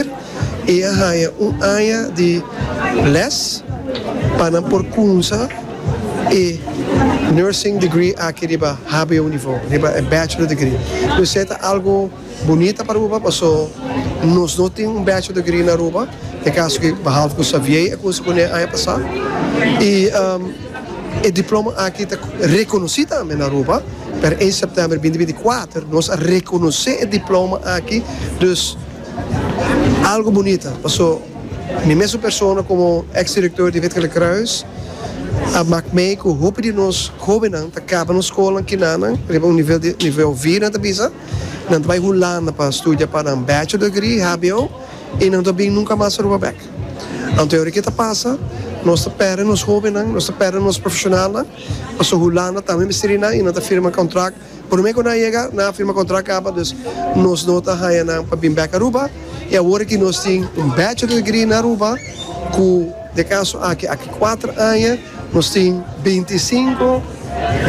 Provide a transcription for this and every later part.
Ayer e a haña un aña di les pa nan por cunsa e Nursing Degree aki riba hbo nivo, riba e Bachelor Degree. Pues e ta algo bunita pa Aruba paso nos no tin un Bachelor Degree na Aruba, te caso que behalve cu Xavier a cunsa cu ne aña pasa. Y e diploma aki ta reconoci tambe na Aruba, pero 1 September bindi bini cuater nos a reconoce e diploma aki, dus. Algo bunita paso mi mesun persona como ex director di Wit-Gele Kruis a mak mei cu hopi di nos hobennan ta caba nos scola kinanan riba un nivel di nivel V nan ta bisa nan ta bay Hulanda pa studia pa nan bachelor degree hbo y nan no ta bin nunca mas Aruba bek anto ora ki ta pasa nos ta perde nos hobennan nos ta perde nos profesionalnan paso Hulanda ta mester y nan ta firma contract. Prome cu nan a yega, nan a firma contract caba, dus nos no ta haya nan pa bin bek Aruba, y awor aki nos tin un bachelor degree na Aruba, cu den caso aki, aki cuater aña, nos tin binti i sinku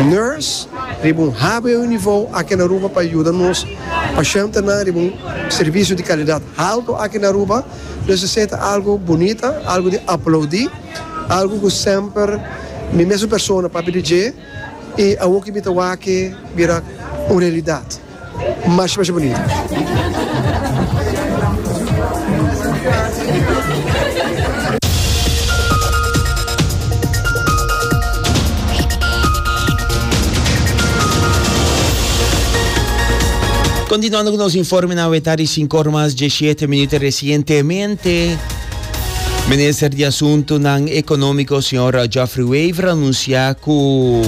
nurse riba un hbo nivo aki na Aruba pa yuda nos pashentnan riba un servicio di calidad halto aki na Aruba, dus esey ta algo bunita, algo di aplaudi, algo cu semper mi mesun persona papia di dje. E awor ki mi ta wake bira un realidat. Masha masha bunito. Continuando cu nos informenan aweta di sinku ora mas diesyete minuto recientemente. Minister di Asuntunan Ekonómiko señor Geoffrey Wever a anunsiá ku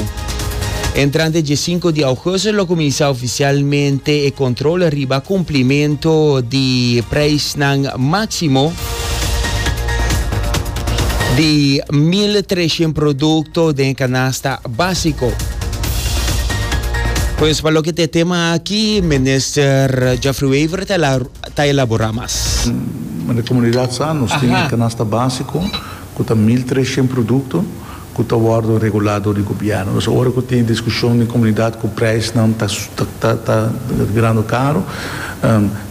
entrante dje sinku di ougusto lo kuminsá ofisialmente e kontrol riba kumplimentu di preisnan máksimo di mil treshent produkto den e kanasta básiko. Pues pa loke ta e tema aki, Minister Geoffrey Wever ta ta elaborá mas. Na e komunidat sa nos tin e kanasta básiko ku ta mil tres shent produkto ku ta wòrdu regulá dor di gobièrnu. Nos ora ku tin e diskushon den komunidat ku preisnan ta ta grando karu,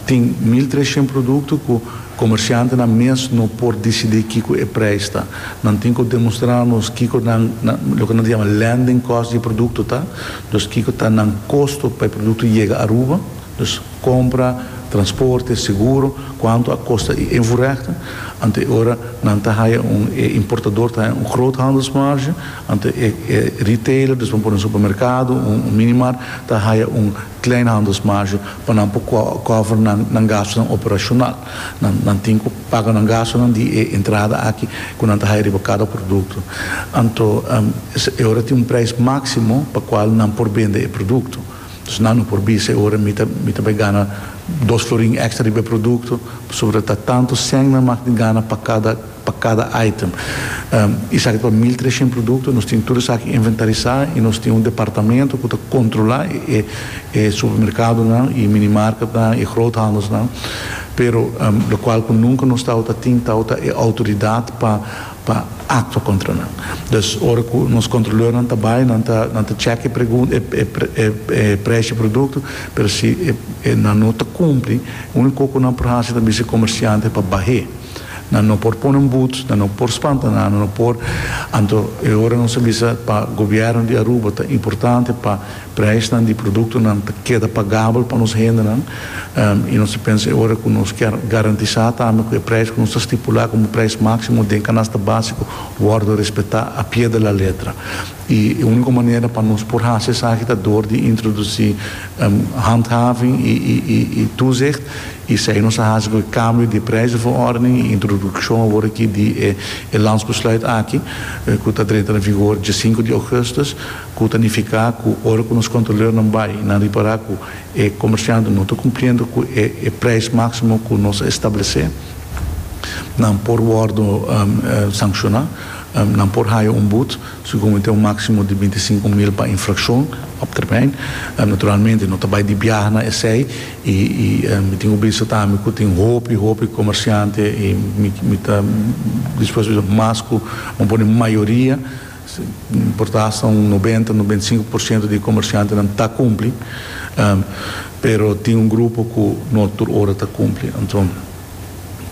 tin mil tres shent produkto ku komershantenan mes no por disidí kiko e preis ta. Nan tin ku demostrá nos kiko nan loke nan ta yama landing cost di e produkto ta, dus kiko ta nan kosto pa e produkto yega Aruba, dus. Compra, transporte, seguro, cuanto a costa y invoerrechten. Ante e ora nan ta haya un, e importador ta haya un groothandelsmarge, ante e retailer, dus nan por un supermercado, un minimart, ta haya un kleinhandelsmarge pa nan por cover nan, nan gastonan operacional. Nan, nan tin cu paga nan gastonan di e entrada aki cu nan ta haya riba cada producto. Anto, e ora tin un prijs maximo pa cual nan por bende e producto. Dus nan no por bisa e ora mi ta mi ta bai gana dos florin extra riba e producto pasobra ta tanto cent nan mak di gana pa cada pa cada item. Esaki ta pa mil trescient producto, nos tin tur esaki inventarisa y nos tin un departamento cu ta controla e e supermercadonan y mini marketnan y groothandelsnan pero locual cu nunca nos tawata tin tawata e autoridad pa pa actua contra nan. Dus ora cu nos controleurnan ta bay nan ta nan ta checa e precio e producto pero si nan no ta cumpli unico cu nan por haci ta bisa e comerciante pa bahe. Nan no por pone un boet, nan no por spanta nan, nan no por anto e ora nos a bisa pa gobierno di Aruba ta importante pa Prijsnan di produktonan ta keda pagabel pa nos hendenan i nos ta pensa e ora ku nos kier garantisá tambe ku e prijs ku nos ta stipulá komo prijs máksimo den kanasta básiko wòrdu respetá a pie de la letra. I e úniko manera pa nos por hasi esaki ta dor di introdusí handhaving i toezicht i esei nos a hasi ku e kambio di e prijzenverordening i introdukshon awor aki di e landsbesluit aki ku ta drenta na vigor dje sinku di ougùstus. Cu ta nifica cu ora cu nos controleurnan bay y nan ripara cu e comerciantenan no ta cumpliendo cu e prijs maximo cu nos a establece, nan por wordo sanciona, nan por haya un boet, segun mi ta un maximo di binti sinku mil pa infraccion op termijn. Naturalmente no ta bay di biaha na esey y mi tin cu bisa tambe cu tin hopi hopi comerciante y mi ta dispuesto bisa mas cu bo pone mayoria, Si importa asta un nobenta, nobenta i sinku por siento di e komershantenan ta kumpli, pero tin un grupo ku no tur ora ta kumpli. Anto.